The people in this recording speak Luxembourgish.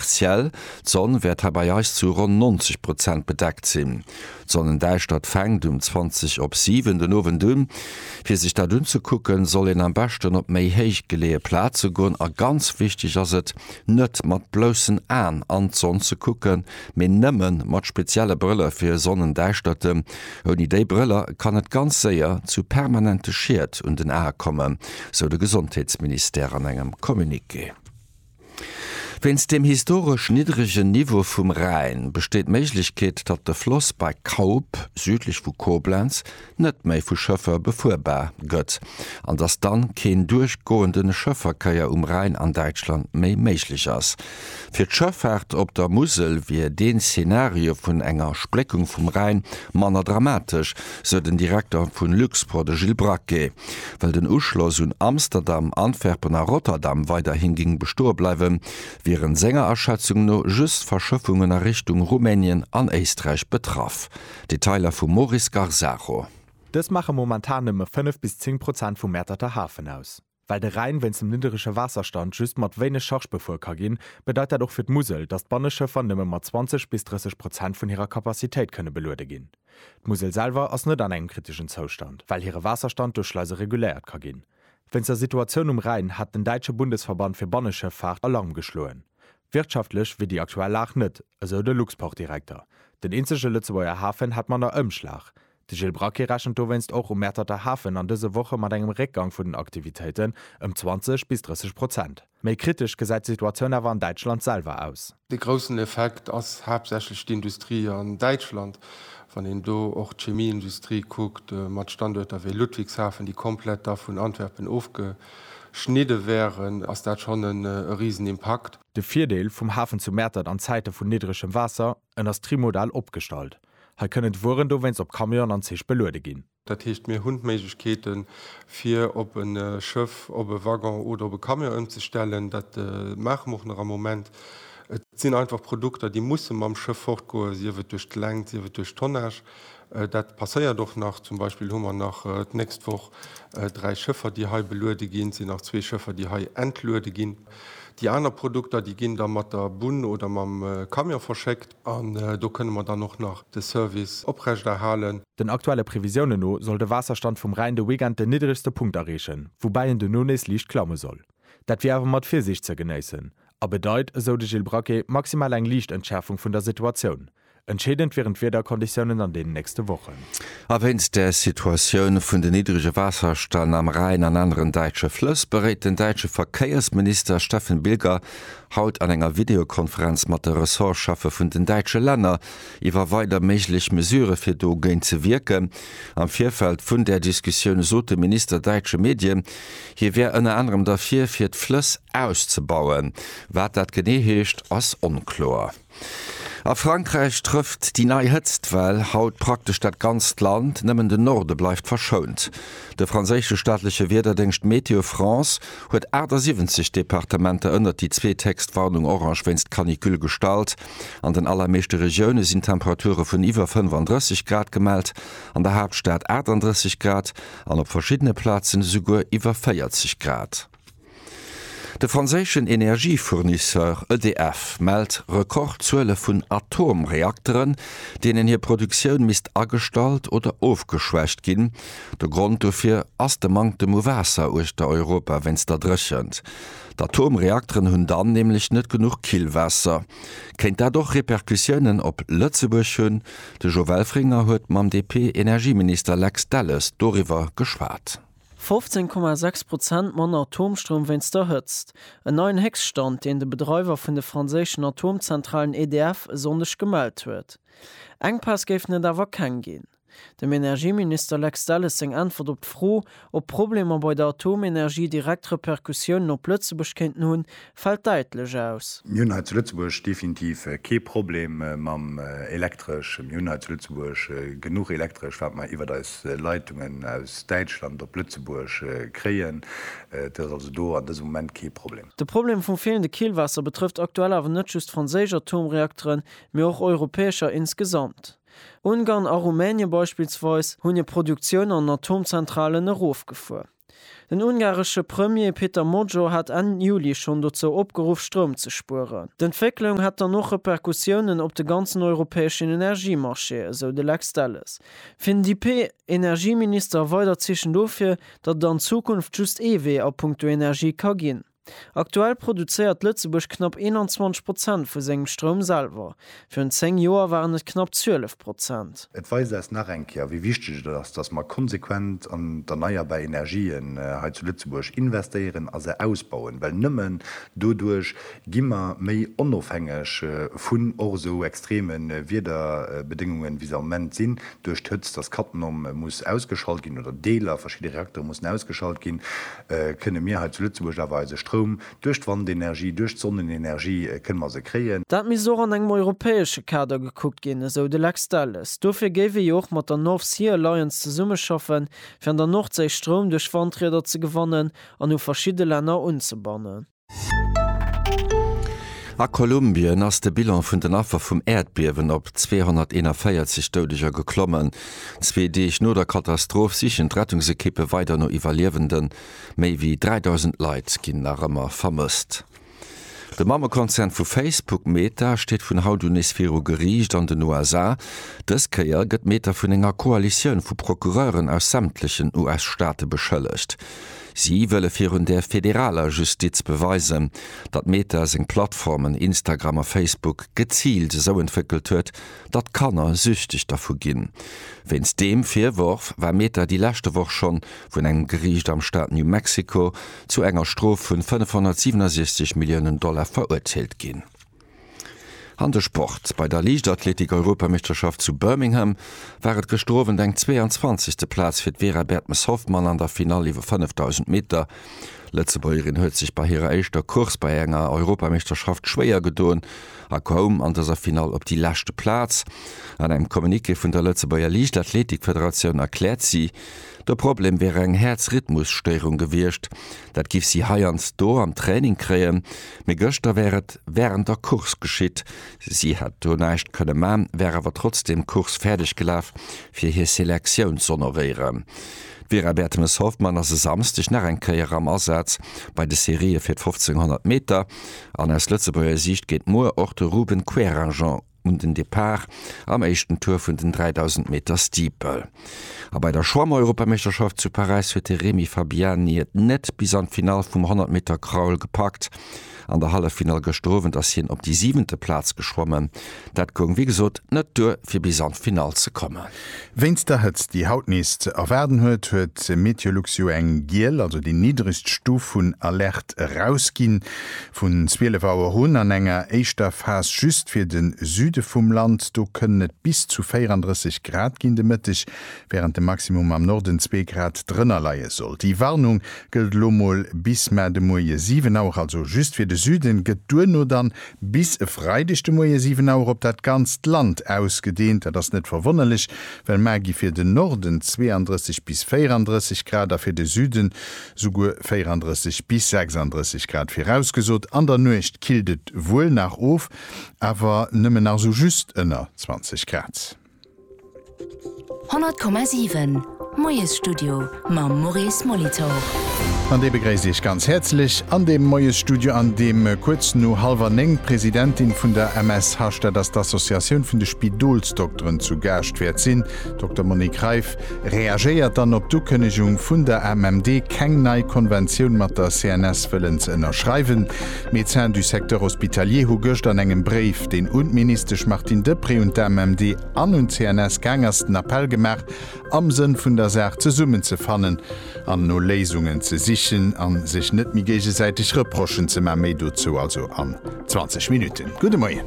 Partiell, d'Sonn wäert hei bei eis zu ronn 90 Prozent bedeckt sinn. D'Sonnendäischtert fänkt um 20 op 7 den Owend un. Fir sech dat unzekucken, soll een am beschten op méi héich geleeë Plaze goen a ganz wichteg ass et, net mat bloussen Aen an d'Sonn ze kucken, mee nëmme mat spezielle Brëller fir Sonnendäischterten. Ouni déi Brëller kann et ganz séier zu permanente Schied un den Ae kommen, sou de Gesondheetsministère an engem Communiqué. Wéinst dem historesch niddregen Niveau vum Rhäin besteet d'Méiglechkeet, datt de Floss bei Kaup, südlech vu Koblenz, net méi vu Schëffer befuerbar gëtt an datt dann keen duerchgoende Schëfferkeier um Rhäin an Däitschland méi méiglech ass. Fir d'Schëffaart op der Musel wier deen Szenario vun enger Spléckung vum Rhäin manner dramatesch, sou den Direkter vun Luxpro, de Gilles Braquet. Well den Uschloss un Amsterdam, Antwerpen a Rotterdam weiderhi géing bestoe bleiwen, wieren senger Aschätzung no just Verschëffungen a Richtung Rumänien an Éisträich betraff. Detailer vum Moris Garzaro. Dës maache momentan nëmme 5 bis 10 Prozent vum Mäerterter Hafen aus. Well de Rhäin wéinst dem nidderege Waasserstand just mat wéineg Charge befuer ka ginn, bedeit dat och fir d'Musel, datt d'Banneschëffer nëmme mat 20 bis 30 Prozent vun hirer Capacitéit kënne beluede ginn. D'Musel selwer ass net an engem kriteschen Zoustand, well hire Waasserstand duerch Schleise reguléiert ka ginn. Wéinst der Situatioun um Rhäin hat den däitsche Bundesverband fir Banneschëffaart Alarm geschloen. Wirtschaftlech wier déi aktuell Lag net, esou de Luxportdirekter. Den eenzege Lëtzebuerger Hafen hätt manner Ëmschlag. De Gilles Braquet rechent dowéinst och um Mäerterter Hafen an dëse Woche mat engem Réckgang vun den Aktivitéiten ëm 20 bis 30 Prozent. Méi kritesch gesäit d'Situatioun awer an Däitschland selwer aus. De groussen Effekt ass haaptsächlech d'Industrie an Däitschland, wann een do och d'Chemieindustrie kuckt, mat Standuerter wéi Ludwigshafen, déi komplett da vun Antwerpen ofgeschnidde wären, ass dat schonn e Risenimpakt. De Virdeel vum Hafen zu Mäertert, an Zäite vun niddregem Waasser, en ass trimodal opgestallt. Hei kënnen d'Wueren dowéinst op Camionen an Zich beluede ginn. Dat heescht, mir hunn d'Méiglechkeete fir op e Schëff, op e Waggon oder op e Camion ëmzestellen. Dat maache mer och nach am Moment. Et sinn einfach Produkter, déi musse mam Schëff fortgoen, sief et duerch d'Längt, sief et duerch d'Tonnage. Dat passéiert och nach. Zum Beispill hu mer nach d'nächst Woch dräi Schëffer, déi hei beluede ginn. Et sinn nach zwee Schëffer, déi hei entluede ginn. Déi aner Produkter, déi ginn da mat der Bunn oder mam Camion verschéckt. An do kënne mer dann och nach de Service oprechterhalen. Den aktuelle Previsiounen no soll de Waasserstand vum Rhäin de Weekend den niddregste Punkt erreechen, woubäi en duerno nees liicht klamme soll. Dat wier awer mat Virsiicht ze genéissen a bedeit, esou de Gilles Braquet, maximal eng liicht Entschäerfung vun der Situatioun. Entscheedend wieren d'Wiederkonditiounen an deenen nächste Wochen. A wéinst der Situatioun vun den niddrege Waasserstänn am Rhäin an aneren däitsche Flëss, beréit den däitsche Verkéiersminister Steffen Bilger haut an enger Videokonferenz mat de Ressortcheffe vun den däitsche Länner iwwer weider méiglech Mesurë fir do géint ze wierken. Am Virfeld vun där Diskussioun sot de Minister däitsche Medien, hie wär ënner anerem derfir, fir d'Flëss auszebauen. Wat dat genee heescht, ass onkloer. A Frankräich trëfft déi nei Hëtztwell haut praktesch dat ganzt Land, nëmmen de Norde bleift verschount. De franséische staatleche Wiederdéngscht Météo France huet 78 Departementer ënnert déi zweethéchst Warnung orange wéinst Canicule gestallt. An den allermeeschte Regioune sinn Temperature vun iwwer 35 Grad gemellt, an der Haaptstad 38 Grad an op verschiddene Plazen esouguer iwwer 40 Grad. De franséischen Energiefournisseur EDF mellt Rekordzuele vun Atomreakteren, deenen hir Produktioun misst agestallt oder ofgeschwächt ginn. De Grond dofir ass de Manktem u Waasser uechter Europa wéinst der Dréchent. D'Atomreakteren hunn dann nämlech net genuch Killwaasser. Kéint dat och Repercussiounen op Lëtzebuerg hunn? De Jo Welfringer huet mam DP-Energieminister Lex Delles doriwwer geschwat. 15,6 Prozent manner Atomstroum wéinst der Hëtzt, en neien Héchststand, deen de Bedreiwer vun de franséischen Atomzentralen EDF e Sonndeg gemellt huet. Enkpäss géifen et awer keng ginn. Dem Energieminister Lex Delles seng Äntwert op d'Fro, ob d'Problemer bei der Atomenergie direkt Repercussiounen op Lëtzebuerg kéinten hunn, fällt däitlech aus. Mir hunn hei zu Lëtzebuerg definitiv kee Problem mam Elektresch. Mir hunn hei zu Lëtzebuerg genuch Elektresch, wat mer iwwert eis Leitungen aus Däitschland op Lëtzebuerg kréien. Dat ass also do an dësem Moment kee Problem. De Problem vum feelende Killwaasser betrëfft aktuell awer net just franséisch Atomreakteren, mee och europäescher insgesamt. Ungarn a Rumänien beispillsweis hunn hir Produktioun an Atomzentralen erofgefuer. Den ungaresche Premier Peter Magyar hat Enn Juli schonn dozou opgeruff, Stroum ze spueren. D'Entwécklung hätt dann och Repercussiounen op de ganzen europäeschen Energiemarché, esou de Lex Delles. Fir den DP-Energieminister a weider Zeechen dofir, datt et an Zukunft just ee Wee a puncto Energie ka ginn. Aktuell produzéiert Lëtzebuerg knapp 21 Prozent vu sengem Stroum selwer, virun 10 Joer waren et knapp 12 Prozent. Et weist eis nach eng Kéier, wéi wichteg et ass, datt mer konsequent an d'erneierbar Energien hei zu Lëtzebuerg investéieren a se ausbauen, well nëmmen doduerch gi mer méi onofhängeg vun och esou extreme Wiederbedéngungen, wéi se am Moment sinn, duerch d'Hëtzt, datt Cattenom muss ausgeschalt ginn oder Deeler, verschidde Reaktere mussen ausgeschalt ginn. kënne mir hei zu Lëtzebuerg awer eise Stroum duerch d'Wandenergie, duerch d'Sonnenenergie kënne mer se kréien. Dat misst och an engem europäesche Kader gekuckt ginn, esou de Lex Delles. Dofir géif ee jo och mat der North Sea Alliance zesummeschaffen, fir an der Nordséi Stroum duerch Wandrieder ze gewannen an u verschidde Länner unzebannen. A Kolumbien ass de Bilan vun den Affer vum Äerdbiewen op 241 Doudeger geklommen. Zwee Deeg no der Katastroph sichen d'Rettungsekippe weider no Iwwerliewenden. Méi wéi 3.000 Leit ginn nach ëmmer vermësst. De Mammekonzern vu Facebook, Meta, steet vun haut un nees viru Geriicht an den USA. Dës Kéier gëtt Meta vun enger Koalitioun vu Procureuren aus sämtlechen US-Staate beschëllegt. Si wëlle virun der federaler Justiz beweisen, datt Meta seng Plattformen Instagram a Facebook geziilt esou entwéckelt huet, datt Kanner süchteg dervu ginn. Wéinst deem Virworf war Meta déi leschte Woch schonn vun engem Geriicht am Staat New Mexico zu enger Strof vun 567 Milliounen Dollar verurteelt ginn. An de Sport, Bei der Liichtathletik-Europameeschterschaft zu Birmingham war et gëschter Owend eng 22. Plaz fir d'Vera Bertmes-Hoffmann an der Finall iwwer 5.000 Meter. D'Lëtzebuergerin huet sech bei hirer éischter Course bei enger Europameeschterschaft schwéier gedoen a koum an dëser Finall op déi leschte Plaz. An engem Communiqué vun der Lëtzebuerger Liichtathletik-Federatioun erkläert si, De Problem wier eng Häerzrhythmusstéierung gewiescht. Dat giff si heiansdo am Training kréien, mee gëschter wär et wärend der Course geschitt. Si hätt do näischt kënne man, wär awer trotzdeem d'Course fäerdeg gelaf, fir hir Selektioun z'honoréieren. D'Vera Bertemes-Hoffmann ass e Samsdeg nach eng Kéier am Asaz bei de Serië fir d'Fofzénghonnert Meter an aus Lëtzebuerger Siicht geet muer och de Ruben Querinjean un den Depart am éischten Tour vun den 3.000 Meter Steeple. A bei der Schwamm-Europameeschterschaft zu Paräis huet de Remy Fabiani et net bis an d'Finall vum 100 Meter Crawl gepackt. An der Halleffinall gëschter Owend ass hien op déi siwente Plaz geschwommen. Dat goung wéi gesot net duer fir bis an d'Finall ze kommen. Wéinst der Hëtzt, déi haut nees ze erwaarden huet, huet MeteoLuxU eng giel, also déi niddregst Stuf vun Alerte erausginn. Vun 12 Auer un, an enger éischter Phas just fir de Süde vum Land, do kënnen et bis zu 34 Grad ginn de Mëtteg, wärend de Maximum am Norden zwee Grad drënner leie soll. Déi Warnung gëllt elo mol bis mar de Muerje 7 Auer, also just fir de Süden, gëtt duerno dann Bis e Freideg de Moie 7 Auer op dat ganzt Land ausgedeent. Dat ass net verwonnerlech, well mar gi fir den Norden 32 bis 34 Grad a fir de Süden souguer 34 bis 36 Grad virausgesot. An der Nuecht killt et wuel nach of, awer nëmmen nach sou just ënner 20 Grad. 100,7 Moiesstudio mam Maurice Molitor. An dee begréisst Iech ganz häerzlech an deem Moiesstudio, an deem kuerz no hallwer néng d'Presidentin vun der MSH, dat ass d'Associatioun vun de Spidolsdokteren, zu Gaascht wäert sinn. Dokter Monique Reiff reagéiert dann op d'Ukënnegung vun der AMMD, keng nei Konventioun mat der CNS wëllen ze ënnerschreiwen. D'Médecins du secteur hospitalier hu gëscht an engem Bréif, deen un d'Ministesch Martine Deprez, un d'AMMD an un d'CNS gaang ass, den Appell gemaach, am Sënn vun der Saach zesummen ze fannen an no Léisungen ze sichen a sech net méi géigesäiteg Reprochen ze man. Méi dozou also an 20 Minutten. Gudde Moien.